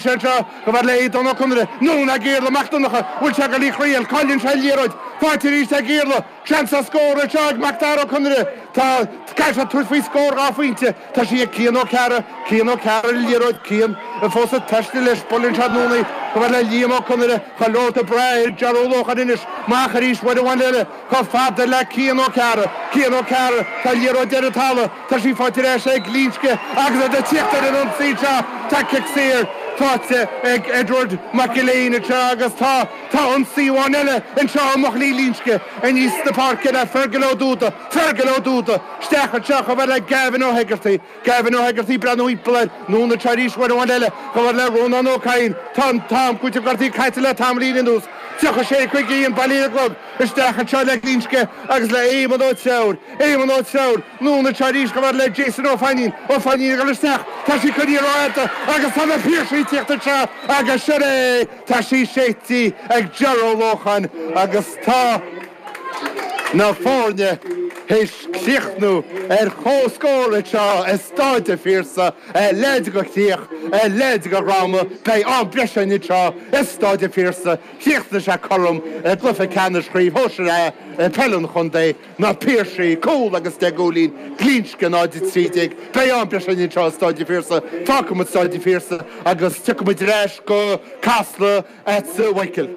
anseo chomh fada le Aodán Ó Conaire anonn ag Iarla Mac Donncha, an bhfuil sé ag goil í a thriail, cailleann sé an liathróid faighte arís ag Iarla, tá seans scór anseo ag Macdara Ó Conaire, tá, caithfidh sé tabhairt faoi scór dhá phointe, tá sí ag Cian Ó Cearra, Cian Ó Cearra leis an liathróid, Cian fós ag taisteal leis, buaileann sé anonn í chomh fada le Liam Ó Conaire, chuile dhuine ag breathnú ar Ger Ó Lócháin anois, amach arís uair amháin eile. Chomh fada le Cian Ó Cearra. Cian Ó Cearra, tá an liathróid ar an talamh, tá sí faighte ar ais ag Glinsce agus iad ag tíocht ar an ionsaí anseo, tá cic saor faighte ag Edward Mac Gill-Eain anseo agus tá tá ionsaí amháin eile anseo ó bhuachaillí Ghlinsce aníos na páirce le Fergal Ó Dúda, Fergal Ó Dúda, isteach anseo chomh fada le Gavin Ó hEigeartaigh. Gavin Ó hEigeartaigh, ag breathnú i lár, anonn arís uair amháin eile, chomh fada le Rónán Ó Cadhain, tá an t-am cúitimh gortaithe caite le tamaillín anuas, 36 51 bailithe ar an gclog isteach anseo le Glinsce agus le Éamonn Ó Treabhair, Éamonn Ó Treabhair, anonn arís chomh fada le Jason Ó Fainnín, Ó Fainnín a dhul isteach, tá sí coinnithe ró-fhada agus tá na Piarsaigh ag tíocht anseo agus sin é tá sí séidte ag Ger Ó Lócháin agus tá. na foirne théis críochnú ar comhscór anseo i Stáid an Phiarsaigh, a leithéid de chríoch, a leithéid de dhráma, beidh am breise againn anseo i Stáid an Phiarsaigh, chríochnaigh sé cothrom i gcluiche ceannais Chraobh Shóisir A Peile an Chontae, Na Piarsaigh, cúl agus deich gcúilín, Glinsce 0-13, beidh am breise againn anseo i Stáid an Phiarsaigh, fágfaidh muid Stáid an Phiarsaigh agus tiocfaidh muid ar ais go Casla. at Sir Mhichael.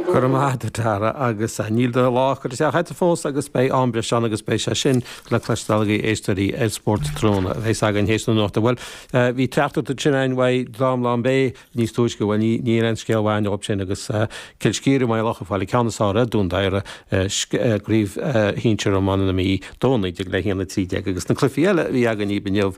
Go raibh maith agat, a Dhara, agus níl do lá curtha isteach agat fós agus beidh am breise ann agus beidh sé sin le cloisteáil agaibh, éisteoirí, ar Spórt Tráthnóna a bheas againn théis na nuachta. Bhuel, bhí trácht agat ansin ann uaidh Drom Lán Bé níos túisce, bhuel, níl aon scéal mhaith inniu ansin agus Cill Scíre, Maigh Locha, ag fáil an ceann is fearr ar Dhún Doire, Craobh Shinsear Iomána na Mí, 2-19 le 1-13 agus na cluichí eile a bhí againn inniu,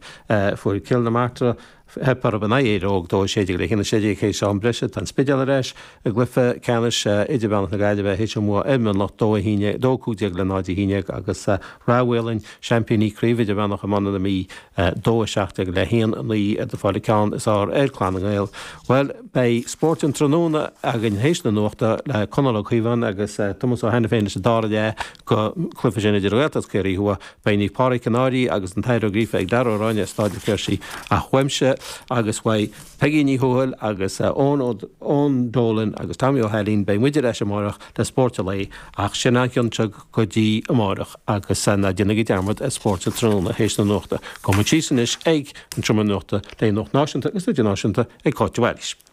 fuair Cill na Martra, Theip orthu in aghaidh Éire Óg 2, 16 le 1, 16 théis am breise. Tá an Spidéal ar ais i gcluiche ceannais idirmheánach na Gaillimhe théis a mbua ar Mhionlach 2, 1, 2, 15 le 0, 11 agus Ráth Maoláin, seaimpíní Craobh Idirmheánach Iomána na Mí 2, 17 le 1, 9 ag fáil an ceann is fearr ar Chlann na nGael. Bhuel, beidh spórt an tráthnóna againn théis na nuachta le Conall Ó Caodháin agus Tomás Ó hAiniféin leis an dara leath den chluiche sin idir an Ghaeltacht is Ciarraí Thuaidh Beidh Páraic Ó Conaire agus Antaine Ó Gríofa ag Darragh Ó Ráinne i Stáid an Phiarsaigh ach uaimse agus uaidh Peigí Ní Thuathail agus Eoin Ó Dólain agus Tommy Ó hAilín. Beidh muid ar ais amáireach le Spóirt a' Lae ach sin é an ceann seo go dtí amáireach agus ná déanaigí dearmad ar Spóirt a' Tráthnóna théis na nuachta. Gabhfaidh muid síos anois ag an Seomra Nuachta le Nuacht Náisiúnta agus Idirnáisiúnta ag Cáit de Bhailís.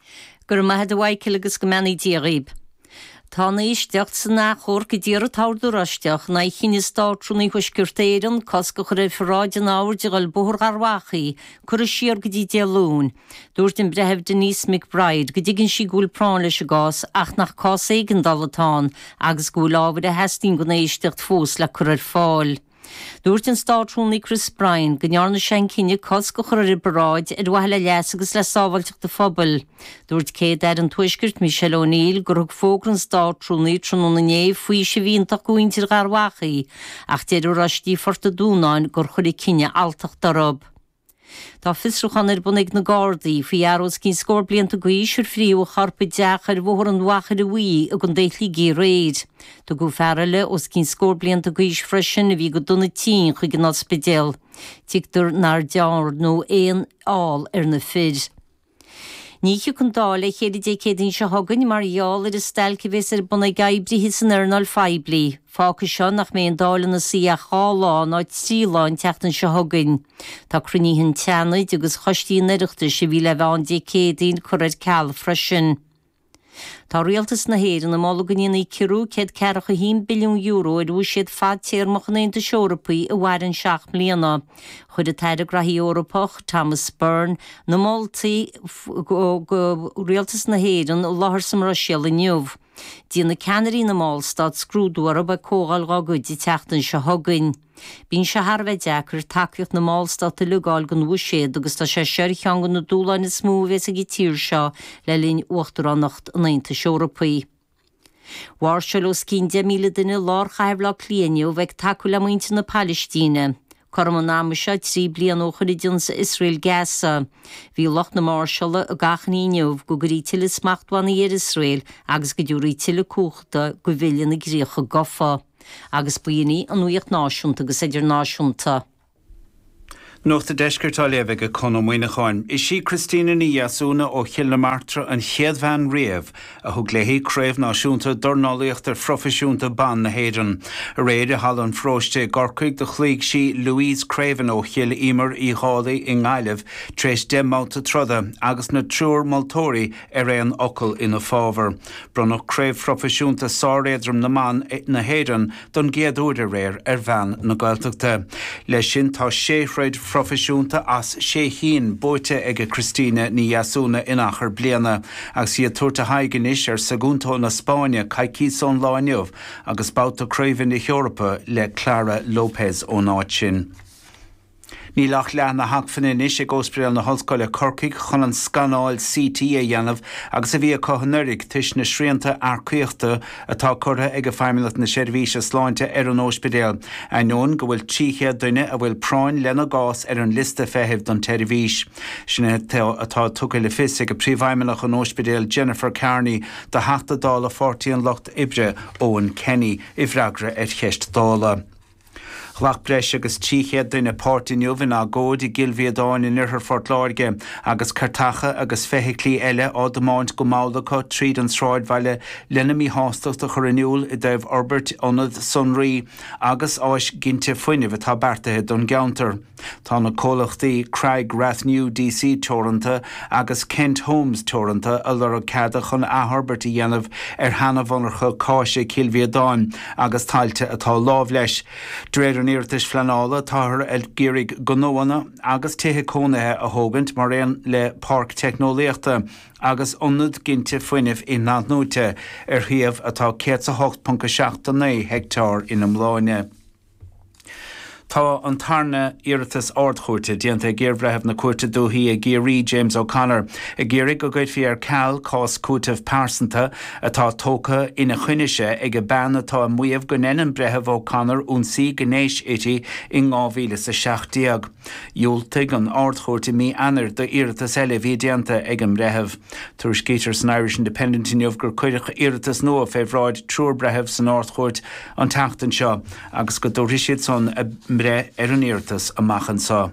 Go raibh maith agat, a Mhaidhcil agus go mbeannaí Dia dhaoib. Tá an éisteacht san athchomharc a d'iarr an tOrd Oráisteach in aghaidh chinneadh Státrúnaí Thuaisceart Éireann cosc a chur ar pharáid an Oird a dhul Bóthar Gharbhachaidh curtha siar go dtí Dé Luain. Dúirt an Breitheamh Denise McBride go dtuigeann sí go bhfuil práinn leis an gcás ach nach cás éigeandála atá ann agus go bhfuil ábhair a theastaíonn don éisteacht fós le cur ar fáil. Dúirt an Státrúnaí Chris Bryant go ndearna sé an cinneadh cosc a chur ar an bparáid ar mhaithe le leas agus le sábháilteacht an phobail. Dúirt Céad-Aire an Tuaiscirt Michelle O'Neill gur thug fógra an Státrúnaí tráthnóna inné faoiseamh iontach do mhuintir Gharbhachaidh ach deir Oráistí Phort an Dúnáin gur chuir an cinneadh alltacht orthu. Tá fiosrúchán ar bun ag na Gardaí faoi fhear os cionn scór blianta d'aois ar frítheadh a chorp i dteach ar Bhóthar an Mhachaire Bhuí i gcontae Shligigh aréir. Tugadh fear eile os cionn scór blianta d'aois freisin, a bhí go dona tinn, chuig an ospidéal. Tuigtear nár dearnadh aon fheall ar na fir. Ní thiocfaidh an Dáil le chéile Dé Céadaoin seo chugainn mar gheall ar an stailc a bheas ar bun ag oibrithe san earnáil phoiblí. Fágfaidh seo nach mbeidh an Dáil ina suí ach dhá lá nó trí lá an tseachtain seo chugainn. Tá cruinnithe an tSeanaid agus choistí an Oireachtais a bhí le bheith ann Dé Céadaoin curtha ar ceal freisin. Tá rialtas na hÉireann ag moladh go ndéanfaí ciorrú €141 billiún ar bhuiséad fadtéarmach an Aontais Eorpaigh a mhaireann seacht mbliana. Chuir an tAire Graithí Eorpach, Thomas Byrne, na moltaí do rialtas na hÉireann i láthair sa mBruiséal inniu. Déanfaidh ceannairí na mballstát scrúdú orthu ag comhdháil dhá gcuid an tseachtain seo chugainn. Bíonn sé thar a bheith deacair tacaíocht na mballstát uilig a fháil don bhuiséad agus tá sé seo ar cheann de na dúshláin is mó a bheas ag an tír seo le linn uachtaránacht an Aontais Eorpaigh. Mháirseáil os cionn 10,000 duine i lár chathair Bhaile Átha Cliath inniu ag tacú le muintir na Palaistíne. Cothrom an ama seo trí bliana ó shin a d'ionsaigh Iosrael Gaza, bhí lucht na máirseála ag achainí inniu go gcuirfí tuilleadh smachtbhannaí ar Iosrael agus go dtabharfaí tuilleadh cumhachta do Bhille na gCríocha Gafa. agus ba shin í an nuaíocht náisiúnta agus idirnáisiúnta. Nuacht an Deiscirt á léamh aige Conn Ó Muíneacháin. Is í Christina Ní Dheasúna ó Chill na Martra an chéad bhean riamh a thug léi Craobh Náisiúnta Dornálaíochta Phroifisiúnta Ban na hÉireann. Aréir i Halla an Pharóiste i gCorcaigh do chloígh sí Louise Creaven ó Chill Íomair Uí Dhálaigh i nGaillimh tar éis deich mbabhta troda agus na triúr moltóirí ar aon fhocal ina fábhar. Bronnadh Craobh Phroifisiúnta Sáréadrom na mBan na hÉireann don gcéad uair aréir ar bhean na Gaeltachta. Leis sin tá sé throid phroifisiúnta as sé chinn buaite aige Christina Ní Dheasúna in achar bliana agus í ag tabhairt a haghaidh anois ar Sagunto na Spáinne coicíos ón lá inniu agus babhta Craoibhe na hEorpa le Clara Lopez ón áit sin. Níl ach leath na hacmhainne anois ag Óspidéal na hOllscoile Corcaigh chun an scanáil CT a dhéanamh agus a bhí acu anuraidh toisc na srianta earcaíochta atá curtha ag Feidhmeannacht na Seirbhíse Sláinte ar an óispidéal, ainneoin go bhfuil 300 duine a bhfuil práinn lena gcás ar an liosta feithimh don tseirbhís. Sin é atá tugtha le fios ag Príomhfheidhmeannach an óispidéil Jennifer Kearney do Theachta Dála Pháirtí an Lucht Oibre, Eoin Kenny, i bhfreagra ar cheist Dála. Ghlac breis agus 300 duine páirt inniu in agóid i gCill Mhíodáin in oirthear Phort Láirge agus cairteacha agus feithiclí eile á dtiomáint go mall acu tríd an sráidbhaile lena míshástacht a chur in iúl i dtaobh fhorbairt ionad sonraí agus áis ginte fuinnimh atá beartaithe don gceantar. Tá na comhlachtaí Craig Rathnew DC Teoranta agus Kent Homes Teoranta ag lorg ceada chun athfhorbairt a dhéanamh ar sheana-mhonarcha cáise Chill Mhíodáin agus tailte atá lámh leis. De réir an iarratais phleanála, táthar ag iarraidh gnóanna agus tithe cónaithe a thógaint mar aon le páirc teicneolaíochta agus ionad ginte fuinnimh inathnuaite ar shuíomh atá 108.79 heicteár in iomláine. Tá an tarna iarratas Ard-Chúirte déanta ag iarBhreitheamh na Cúirte Dúichí i gCiarraí, James O'Connor, ag iarraidh go gcuirfí ar ceal cás cúitimh pearsanta atá tógtha ina choinne-se ag bean atá ag maíomh gur dhein an Breitheamh O'Connor ionsaí gnéis uirthi in 2017. Dhiúltaigh an Ard-Chúirt i mí Eanair d'iarratas eile a bhí déanta ag an mBreitheamh. Tuairiscítear san Irish Independent inniu gur cuireadh iarratas nua fé bhráid triúr Breitheamh san Ard-Chúirt an tseachtain seo agus go dtabharfaidh siad san a mbreith ar an iarratas amach anso.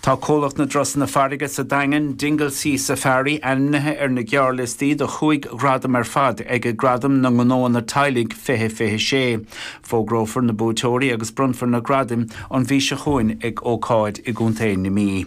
Tá Comhlacht na dTurasanna Farraige sa Daingean, Dingle Sea Safari, ainmnithe ar na gearrliostaí do chúig ghradam ar fad ag Gradaim na nGnóanna Teaghlaigh 2026. Fógrófar na buaiteoirí agus bronnfar na gradaim an mhí seo chugainn ag ócáid i gContae na Mí.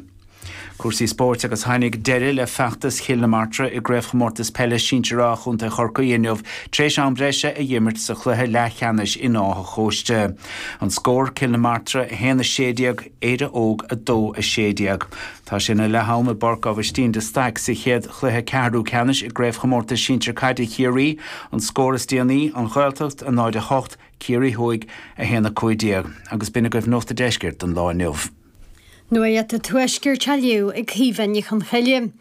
Cúrsaí spóirt agus Tháinig deireadh le feachtas Chill na Martra i gCraobhchomórtas Peile Sinsear A Chontae Chorcaí inniu tar éis am breise a dh'imirt sa chluiche leathcheannais in Áth an Chóiste. An Scór, Cill na Martra 1 16 Éire Óg 2 16. Tá sé ina leath-am i bPáirc Abhaistín de Staic sa chéad chluiche ceathrú ceannais i gCraobhchomórtas Sinsear Caide Chiarraí An scór is déanaí, An Ghaeltacht 0 8 Ciarraí Thuaidh 1 15. Agus b'in agaibh Nuacht an Deiscirt don lá inniu. Nuacht an Tuaiscirt á léamh ag Caoimhe Ní Chonchoille,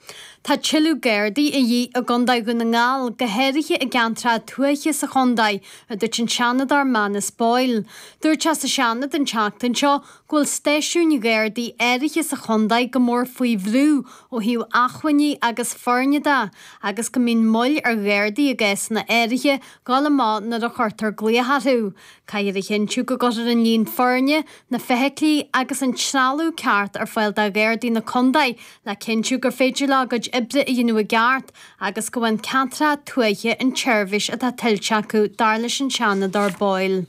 tá tuilleadh Gardaí de dhíth i gContae Dhún na nGall, go háirithe i gceantracha tuaithe sa chontae, a dúirt an Seanadóir Manus Boyle. Dúirt sé sa Seanad an tseachtain seo go bhfuil stáisiúin Ghardaí áirithe sa chontae go mór faoi bhrú ó thaobh acmhainní agus foirne de agus go mbíonn moill ar Ghardaí i gcásanna áirithe dul amach nuair a chuirtear glaoch orthu. Caithfear a chinntiú go gcuirtear an líon foirne, na feithiclí agus an trealamh ceart ar fáil do Ghardaí na Contae le cinntiú gur féidir leo a gcuid oibre a dhéanamh i gceart agus go bhfaigheann ceantracha tuaithe an tseirbhís atá tuillte acu, dar leis an Seanadóir Boyle.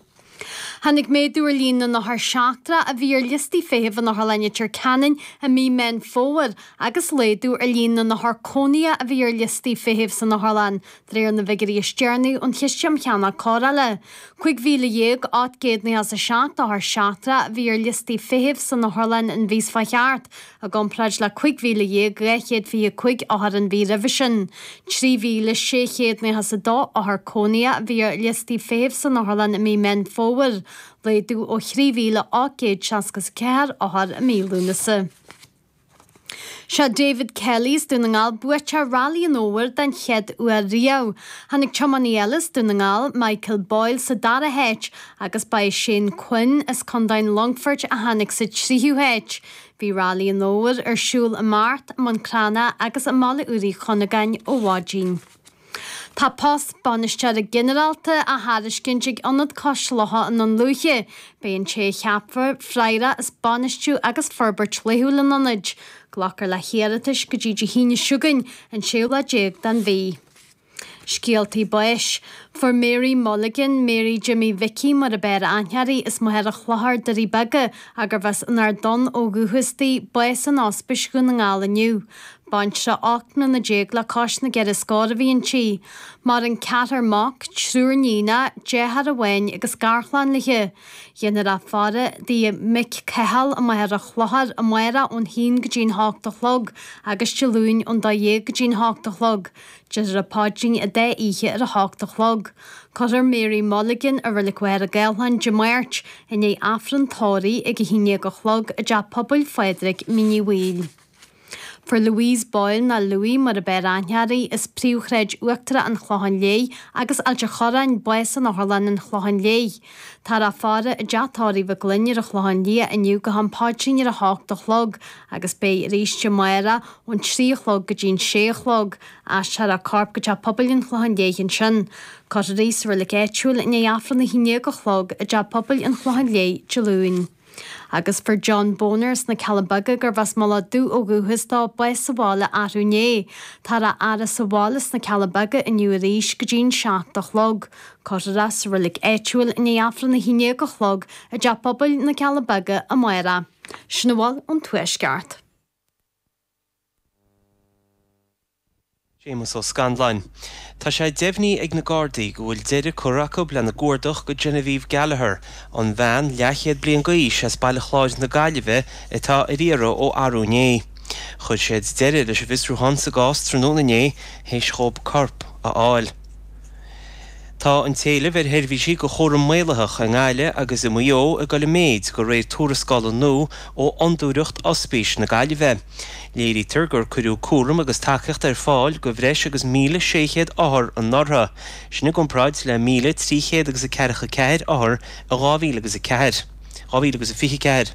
Tháinig méadú ar líon na n-othar seachtracha a bhí ar liostaí feithimh in Otharlann Leitir Ceanainn i mí Meán Fómhair agus laghdú ar líon na n-othar cónaithe a bhí ar liostaí feithimh san otharlann De réir na bhfigiúirí is deireanaí ón Chiste um Cheannach Cóireála, 15,897 othar seachtrach a bhí ar liostaí feithimh san otharlann an mhí seo chuaigh thart, i gcomparáid le 15,225 othar an mhí roimhe sin. 3,692 othar cónaithe a bhí ar liostaí feithimh san otharlann i mí Meán Fómhair, laghdú ó thrí mhíle ocht gcéad seasca is a ceathair othar i mí Lúnasa. Is é David Kelly as Dún na nGall, buaiteoir Railí an Fhómhair den chéad uair riamh. Tháinig tiománaí eile as Dún na nGall, Michael Boyle, sa dara háit agus ba é Shane Quinn as Contae an Longfoirt a tháinig sa tríú háit. Bhí Railí an Fhómhair ar siúl i mBeart, i mBun Cranncha agus i mBaile Úr Uí Chuinneagáin ó mhaidin. Tá post Bainisteora Ginearálta á thairiscint ag Ionad Cois Locha i nDún Lúiche. Beidh an té a cheapfar, freagrach as bainistiú agus forbairt laethúil an Ionaid. Glacfar le hiarratais go dtí Dé hAoine seo chugainn, an séú lá déag den mhí. Scéaltaí Báis. Fuair Mary Mulligan, Mary Jimmy Mhicí mar ab fhearr aithne uirthi, as Machaire Chlochair, Doirí Beaga, gurbh as an Ard Donn ó dhúchas di, bás in Ospís Dhún na nGall inniu. Baintreach ocht mbliana déag le cois na gceithre scór a bhí inti. Maireann ceathrar mac, triúr níonach, deartháir amháin agus garchlann léi. Dhéanfar a faire i dtigh a mic Cathal i Machaire Chlochair amárach ón haon go dtí'n hocht a chlog agus Dé Luain ón dó dhéag go dtí'n hocht a chlog. Déarfar an paidrín an dá oíche ar a hocht a chlog. Cuirfear Mary Mulligan i Reilig Mhachaire Gathlán Dé Máirt i ndiaidh Aifreann tórraimh ag a haon déag a chlog i dteach pobail Phádraig Mhín Uí Bhaoill. Fuair Louise Boyle nó Louie mar ab fhearr aithne uirthi, as Príomhshráid Uachtarach an Chlocháin Léith agus Ailt a' Chorráin, bás in otharlann an Chlocháin Léith. Táthar á faire i dteach tórraimh McGlynn ar an Chlochán Liath inniu go ham paidrín ar a h-ocht a' chlog agus beidh arís amárach ón trí a chlog go dtín sé a chlog. Aistreofar a corp go teach pobail an Chlocháin Léith ansin. Cuirfear í sa reilig áitiúil i ndiaidh Aifreann a haon déag a' chlog i dteach pobail an Chlocháin Léith Dé Luain. Agus fuair John Boner as na Cealla Beaga gurbh as Mullach Dubh ó dhúchas dó, bás sa bhaile arú inné. Táthar á fhaire sa bhaile sna Cealla Beaga inniu arís go dtí'n seacht a chlog. Cuirfear é sa reilig áitiúil i ndiaidh Aifreann a haon déag a chlog i dTeach Pobail na Cealla Beaga amárach. Sin a bhfuil ón Tuaisceart. Séamus Ó Scanláin, Tá sé deimhnithe ag na Gardaí go bhfuil deireadh curtha acu lena gcuardach do Genevieve Gallagher, an bhean leathchéad bliain d'aois as Baile Chláir na Gaillimhe atá ar iarraidh ó arú inné. Chuir siad deireadh leis an bhfiosrúchán sa gcás tráthnóna inné tar éis dhóib corp a fháil. Tá an t-éileamh ar sheirbhísí do chúram maolaitheach i nGaillimh agus i Maigh Eo ag dul i méid de réir tuarascála nua ó Fhondúireacht Ospís na Gaillimhe. Léirítear gur cuireadh cúram agus tacaíocht ar fáil do bhreis agus 1,600 othar anuraidh, sin i gcomparáid le 1,300 agus a ceathracha ceathair othar in 2004. 2000 agus a fiche a ceathair.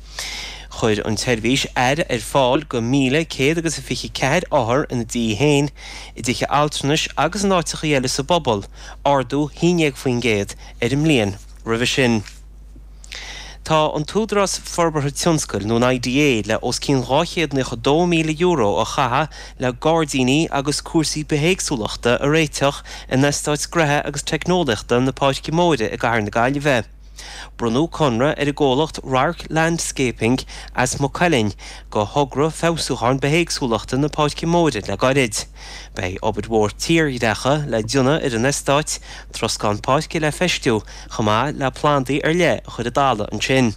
Chuir an tSeirbhís aire ar fáil do mhíle céad agus a fiche ceathair othar ina dtithe féin, i dtithe altranais agus in áiteachaí eile sa bpobal, ardú haon ndéag faoin gcéad ar an mbliain roimhe sin. Tá an tÚdarás Forbartha Tionscail, nó an IDA, le os cionn dhá chéad naocha dó míle euro a chaitheamh le gairdíní agus cúrsaí bithéagsúlachta a réiteach in Eastát Gnóthaí agus Teicneolaíochta na Páirce Móire i gCathair na Gaillimhe. Bronnadh conradh ar an gcomhlacht Radharc Landscaping as Maigh Cuilinn do thogra feabhsúcháin bithéagsúlachta na Páirce Móire le gairid. Beidh obair mhór tírdhreacha le déanamh ar an eastát, troscán páirce le feistiú chomh maith le plandaí ar leith a chur i dtalamh ansin.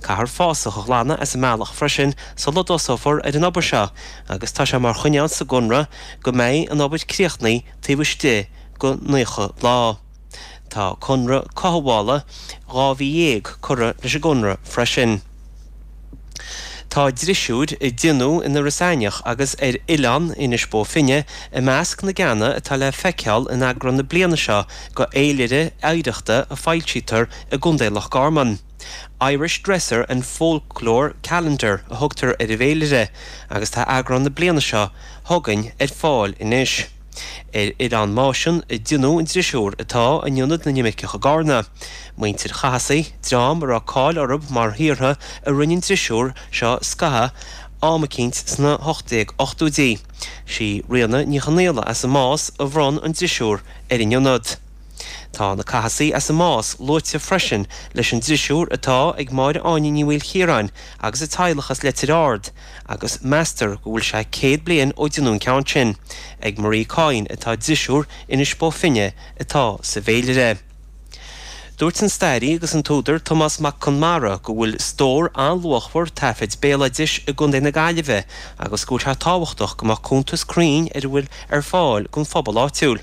Caithfear fásach a ghlanadh as an mbealach freisin sula dtosófar ar an obair seo agus tá sé mar choinníoll sa gconradh go mbeidh an obair críochnaithe taobh istigh de 90 lá. Tá conradh cothabhála dhá mhí dhéag curtha leis an gconradh freisin. Tá drisiúir a déanadh in Iorras Aithneach agus ar Oileán Inis Bó Finne i measc na gceanna atá le feiceáil in eagrán na bliana seo de fhéilire oidhreachta a fhoilsítear i gContae Loch Garman, Irish Dresser and Folklore Calendar a thugtar ar an bhféilire agus tá eagrán na bliana seo chugainn ar fáil anois. Ar an Máisean a déanadh an drisiúr atá in ionad na n-imirceach i gCarna. Muintir Chathasaigh, dream a raibh cáil orthu mar shaortha a rinne an drisiúr seo scatha am eicínt sna 1880idí. Sí Ríona Ní Chonaola as an Más a bhronn an drisiúr ar an ionad. Tá na Cathasaigh as an Más luaite freisin leis an drisiúr atá ag Máire Áine Ní Mhaoilchiaráin agus a teaghlach as Leitir Ard, agus meastar go bhfuil sé céad bliain ó déanadh an ceann sin, ag Marie Coyne atá drisiúr Inis Bó Finne atá sa bhféilire. Dúirt an stairí agus an t-údar Tomás Mac Conmara go bhfuil stór an-luachmhar taifid béaloidis i gContae na Gaillimhe agus go bhfuil sé tábhachtach go mbeadh cuntas cruinn ar a bhfuil ar fáil don phobal áitiúil.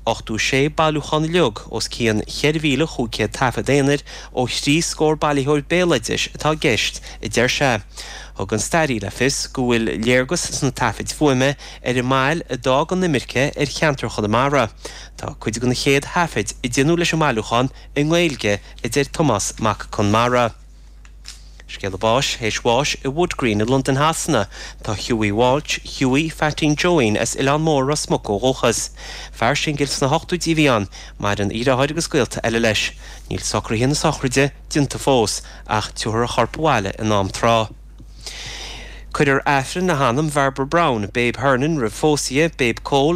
86 bailiúchán uilig os cionn 4,500 taifead aonair ó thrí scór bailitheoir béaloidis atá i gceist, a deir sé. Thug an staraí le fios go bhfuil léargas sna taifid fuaime ar an mbail a d'fhág an imirce ar cheantar Chonamara. Tá cuid de na chéad thaifid a déanadh leis an mbailiúchán i nGaeilge, a deir Tomás Mac Conmara. Scéala Báis théis Bháis i Wood Green i Londain Shasana. Tá Hughie Walsh, Hughie Pheaitín Joeín, as Oileán Mór, Ros Muc ó dhúchas. Fear singil sna hochtóidí a bhí ann. Maireann a dhriotháir agus gaolta eile leis. Níl socruithe na sochraide déanta fós, ach tiúrfar a chorp abhaile in am tráth. Cuirfear Aifreann le hanam Bhairbre Brown, Babe Hernon, roimh phósadh di, Babe Cole,